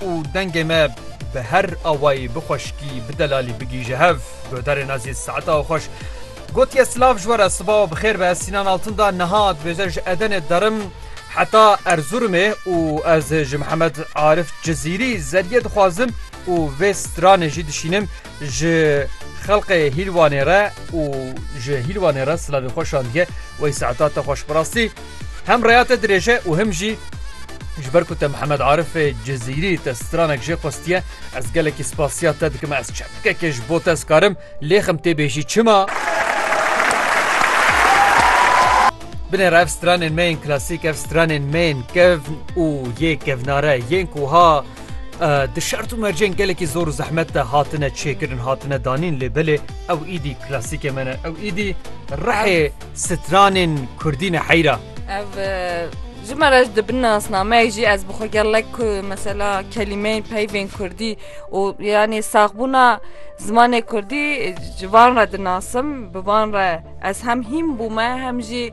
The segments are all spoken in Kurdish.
Û dengê me bi her awayî bi xweşikî, bi delalî bigihîje hev. Guhdarê Nazî Seeta Oxweş gotiye silav ji we re, siba û bi xêr be. Ez Sînan Altun da niha dibêje ji Edenê derim heta Erzurumê û ez ji Mihemed Arif Cizîrî zerîyê dixwazim û vê stranê jî dişînim. Ji xelqê Hîlwanê re û ji Hîlwanê re silavê xwe şandiye wey saeta te xweş bi rastî hem reya te dirêje û him jî ji ber ku te Mihemed Arifê Cizîrî te stranek jê xwestiye ez gelekî spasiya te dikim ez çepkekê ji bo te ez karim lêxim tê bêjî çima Binêre ev stranên me yên klasîk ev stranên me yên kevn û yê kevnare yên ku ha Di şert û mercên gelekî zor û zehmet de hatine çêkirin hatine danîn lê belê ew îdî klasîkê me ne ew îdî rehê stranên kurdî ne heyra. Ev ji me re di bin nasnameyek jî ez bi xwe gelek mesela kelîmeyên peyvên kurdî û yanê saxbûna zimanê kurdî ji van re dinasim bi van re ez hem hîm bûme hem jî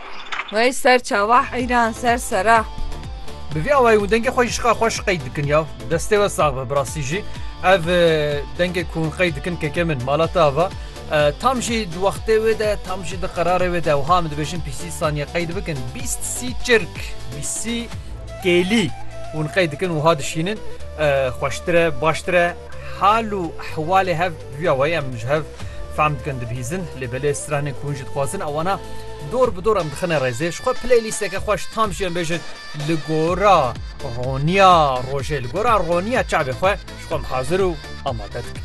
Wey ser çawa heyran ser sera. Bi vî awayî û dengê xwe jî şiqar xwe şiqey dikin ya. Destê we sax be bi rastî jî ev dengê ku hûn qey dikin keke min mala te ava tam jî di wextê wê de tam jî di qerarê wê de wiha em dibêjin pîsî saniye qey dibikin bîst sî çirk bîsî kêlî hûn qey dikin wiha dişînin xweştir e baştir e hal û ehwalê hev Duya wê em ji hev fehm dikin dibihîzin lê belê stranên ku hûn jî dixwazin ewana dor bi dor em dixine rêzê ji xwe playlîsteke xweş tam jî em bêjin li gora roniya rojê li gora roniya çavê xwe ji xwe em hazir û amade dikin.